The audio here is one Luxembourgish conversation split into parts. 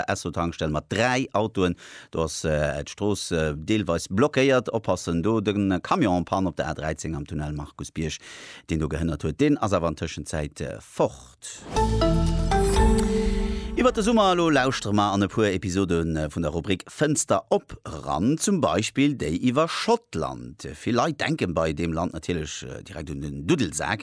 Esso-Tankstell mat dräi Autoen. Do ass d'Strooss deelweis blockéiert. Oppassen do, de Camion en panne op der A13 am Tunnel Markus Bierg, deen do gehënnert huet, deen ass awer an Tëschenzäit fort. Iwwert de Summer elo lauschtere mer an e puer Episode vun der Rubrik Fënster op eran, zum Beispill déi iwwer Schottland. Vill Leit denken bei deem Land natierlech direkt un den Duddelsak.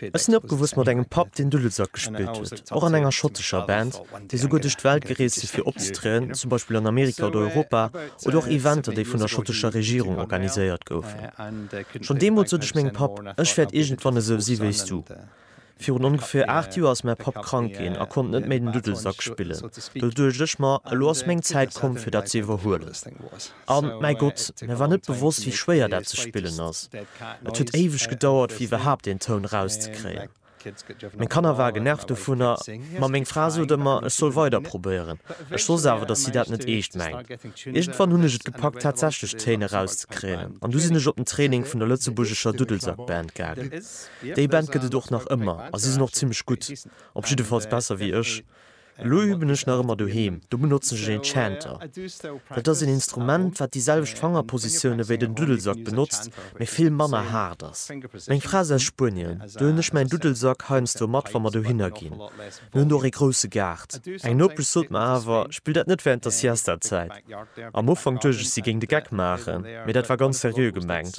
Ech sinn opgewuss mat engem Papp, deen Dudelsak gespillt huet, och an enger schottescher Band, déi souguer duerch d'Welt gereest si fir opzetrieden, zum Beispill an Amerika oder Europa, oder och Eventer, déi vun der schottescher Regierung organiséiert goufen. Schonn deemools sot ech mengem Papp, ech wäert iergendwann esou si wéi s du. Virun ongeféier aacht Joer ass mäi Papp krank ginn a konnt net méi den Dudelsak spillen. Do duecht ech mer, elo ass meng Zäit komm, fir dat ze iwwerhuelen. A mäi Gott, mir war net bewosst, wéi schwéier dat ze spillen ass. Et huet éiweg gedauert, fir iwwerhaapt een Toun erauszekréien. Meng Kanner ware genervt dovunner, ma meng Fra sot ëmmer, ech soll weider probéieren. Ech wosst awer, datt si dat net eescht mengt. Iergendwann hunn ech et gepackt, tatsächlech Téin erauszekréien, an du sinn ech op den Training vun der lëtzebuergescher Dudelsackband gaangen. Déi Band gëtt et och nach ëmmer a si sinn och zimmlech gutt, op jiddefalls besser wéi ech. Elo üben ech nach ëmmer doheem, do benotzen ech een Chanter. Dat ass een Instrument, wat déi selwecht Fangerpositioune wéi den Duddelsack benotzt, mee vill manner haart ass. Meng Fra ass aus Spuenien, do hunn ech mäin Duddelsack heiansdo mat, wa mer dohinner ginn. Mir hunn do och ee grousse Gaart. Eng Nopesch sot mer awer, spill dat net wärend der Siesta-Zäit. Am Ufank duecht ech, si géing de Geck maachen, mee dat war ganz seriö gemengt.